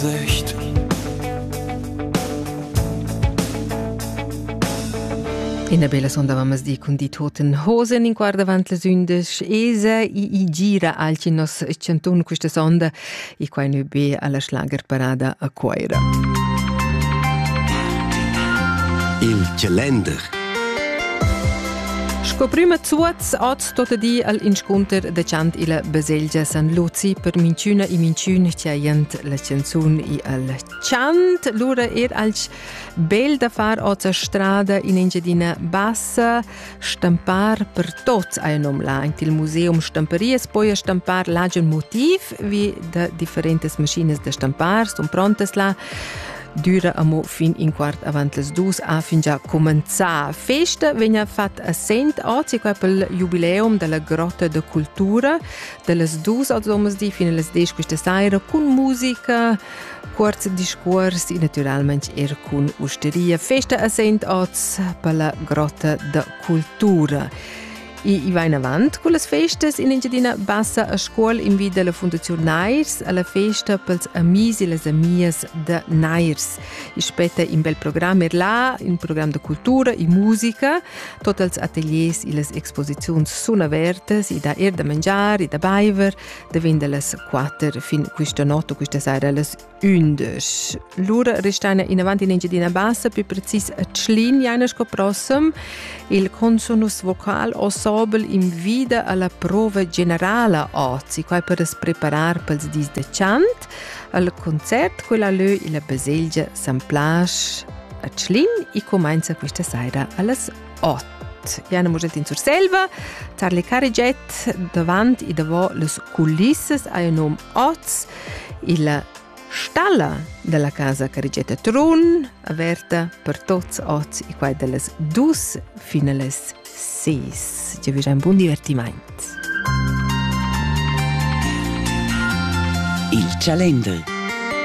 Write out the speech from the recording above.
Sicht. Ina bella sonda mammas di cun di toten hosen in guarda avant las undes esa e i gira alch in nos chanton questa sonda e quai nu be alla schlager parada a Coira. Il calender Sco prima zuoz oz Tot di al inscunter dechant illa baselgia San Luzi per minchüna e minchün chiaint la canzun e al chant. Lura er alch bel da far ota strada in Engiadina Bassa, stampar per tots ha nom là. In il museum stamparias poi stampar là giun motiv vi da differentes maschinas da stampar, son prontas là. düra amo fin in quart avant las dus ha fingià cumenzà. Festa vegna fatta a Sent oz qua pel jubileum della grotta de cultura dellas dus oz domersdi fin las 10 questa saira cun musica, kurz discours e naturalmente er con osteria. Festa a Sent oz per la grotta de cultura. I va inavant con las festas in Engiadina Bassa a scuol in vi della Fundazione Nairs alla festa pels amis e las amias da Nairs. I spetta in bel programm er là, in programm de cultura e musica, tot els ateliers e les exposizions sun avertas i da er da mangiar e da baiver, devin das quatter fin questa notte, questa sera, las Ündesch. Lura restaina inavant in Engiadina Bassa, più precis a Tschlin, jaina sco prossem. Il consonus vocal ensemble invida alla prova generala ozi, quai per as preparar pels dis de chant. Al concert, quella lö illa baselgia San Plasch a Tschlin e comenza questa saira allas Ot. Jana Muget in Surselva, Charlie Carigiet, davant e davant les culissas ha il num Oz, il stalla della casa Carigetta Trun, averta per tots oz e quai dellas dus finales seis. Ti avais un buon divertimento. Il Calendar